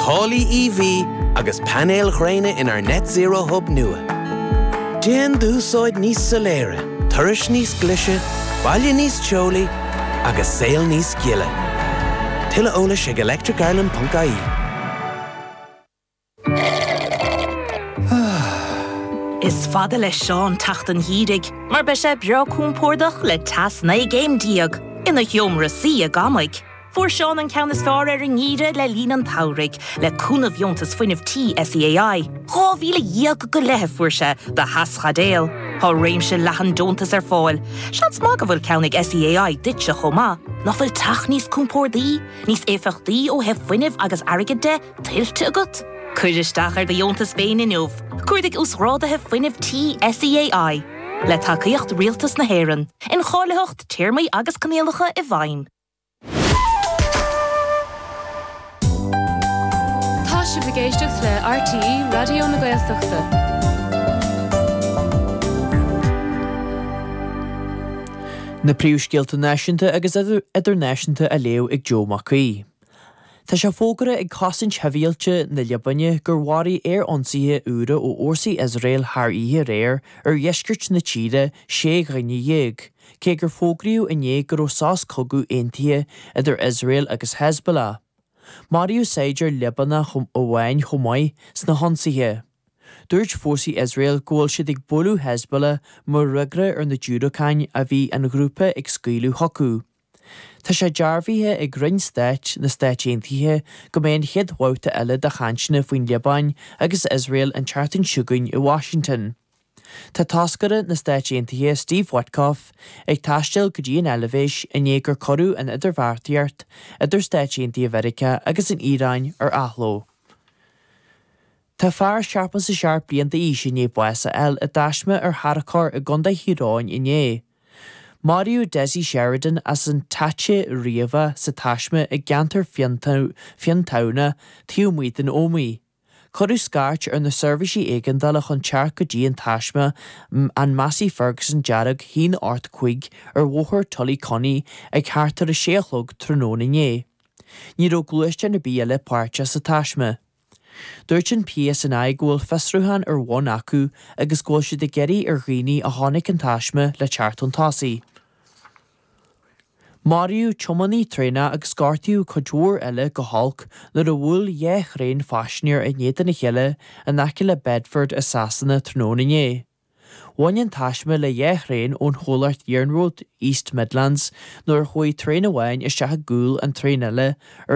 Táillí EV agus painéil ghréine inár Net Zero Hub nua. Déan d'úsáid níos soiléire, turais níos glise, baile níos teolaí agus saol níos gile. Tuilleadh eolais ag electricireland.ie. Is fada le Seán teacht an gheimhridh mar beidh sé breá compordach le teas 19 gcéim ina sheomra suí i gcónaí. Fuair Seán an ceann is fearr ar an ngeimhreadh le linn an tsamhraidh, le cúnamh dheontas fuinnimh Tí SEAI. Dhá mhíle dhéag go leith a fuair sé do theaschaidéil. Tá réimse leathan deontas ar fáil. Seans maith go bhfuil ceann ag SEAI duitse chomh maith. Nach bhfuil teach níos compórdaí, níos éifeachtaí ó thaobh fuinnimh agus airgid de, tuillte agat? Cuir isteach ar do dheontas féin inniu. Cuardaigh Uasghrádaithe Fuinnimh Tí SEAI. Le tacaíocht Rialtas na hÉireann. Incháilitheacht, Téarmaí agus Coinníollacha i bhfeidhm. Tá sibh ag éisteacht le RTÉ Raidió na Gaeltachta. Na príomhscéalta náisiúnta agus idirnáisiúnta á léamh ag Joe Mac Aoidh. Tá sé fógartha ag Cosaint Shibhialta na Liobáine gur mharaigh aer-ionsaithe úra ó fhórsaí Iosrael thar oíche aréir ar dheisceart na tíre sé dhuine dhéag, Cé gur fógraíodh inné go raibh sos cogaidh aontaithe idir Iosrael agus Hezbollah, maraíodh saighdiúir Liobánach amháin chomh maith sna hionsaithe. Dúirt fórsaí Iosrael go bhfuil siad ag bualadh Hezbollah mar fhreagra ar na diúracáin a bhí an ghrúpa ag scaoileadh chucu. Tá sé dearbhaithe ag Roinn Stáit na Stáit Aontaithe go mbeidh an chéad bhabhta eile de chainteanna faoin Liobáin agus Iosrael an tseachtain seo chugainn i Washington. Tá toscaire na Stáit Aontaithe Steve Witkoff ag taisteal go dtí an Eilbhéis i ndiaidh gur cuireadh an idirbheartaíocht idir Stáit Aontaithe Mheiriceá agus an Iaráin ar athló. Tá fear 67 bliain d'aois i ndiaidh bás a fháil i dtaisme ar tharracóir i gContae Thír Eoghain inné. Maraíodh Desi Sheridan as an Táite Riabhach sa taisme i gceantar Fionntamhnaí taobh amuigh den Ómaigh. Cuireadh scairt ar na seirbhísí éigeandála chun teacht go dtí an taisme, an Massey Ferguson dearg haon ocht cúig ar bhóthar Tullyconney ag thart ar a sé a chlog tráthnóna inné. Ní raibh gluaisteán ar bith eile páirteach sa taisme. Dúirt an PSNI go bhfuil fiosrúchán ar bun acu agus go bhfuil siad ag iarraidh ar dhaoine a chonaic an taisme le teacht chun tosaigh. Maraíodh tiománaí traenach agus gortaíodh cuid mhór eile go holc nuair a bhuail dhá thraein phaisinéir in éadan a chéile in aice le Bedford i Sasana tráthnóna inné. Bhain an taisme le dhá thraein ón chomhlacht iarnróid East Midlands nuair a chuaigh traein amháin isteach i gcúl an traein eile ar